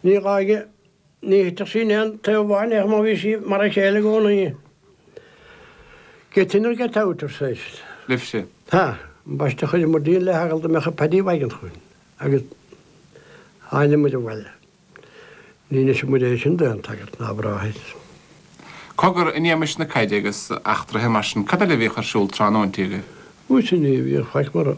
Ní gá aige. Ní thuitfeadh sí in aon taobh amháin ach má bhí sí mar a chéile i gcomhnaí. Get in or get out, arsa Eist. Libhse. Tá. An baiste a chuireamar dínn le heagal go mbeadh Paddy Wagon chugainn agus thánamair abhaile. Ní neosfaimid é sin d'aon tsagart ná bráthair. Cogar, in éagmais na caide agus eachtraithe mar sin, cad eile a bhíodh ar siúl tráthnóinti agaibh? Ó mhuise ní bhíodh faic mórán.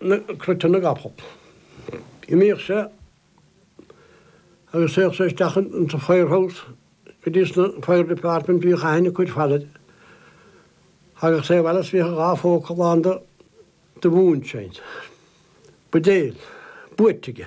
na cruite na gcapall. D'imíodh sé agus théadh sé isteach in sa fire house go dtí sna fire department bhíodh aithne cuid fail air thagadh sé abhaile is bhíodh a dhá phóca lán de mhoonshine. Buidéil. Buaic aige.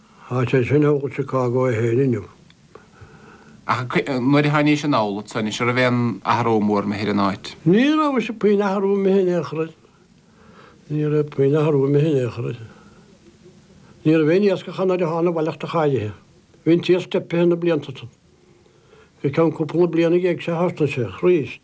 Tá sé sin amhlaidh i Chicago é fhéin inniu. Ach nuair a thánaís anall anso anois, a' raibh aon athrú mór imithe ar an áit? Ní raibh mhuise puinn athrú imithe air in aon chor, ní raibh puinn athrú imithe air in aon chor. Ní raibh aon iascach nuair a thána abhaile ach go háirithe. Bhí an t-iasc teipithe na blianta san. Go ceann cúpla bliana déag sé thart ansin aríst.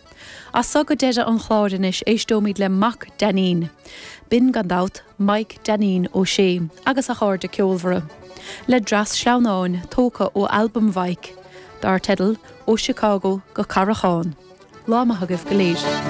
As so go deireadh an chláir anois éisteoimid le mac Dainín, binn gan dabht, Maidhc Dainín Ó Sé agus a chairde ceolmhara, le dreas sleamhnáin tógtha ó albam Mhaidhc, dar teideal 'Ó Chicago go Carrachán'. Lá maith agaibh go léir.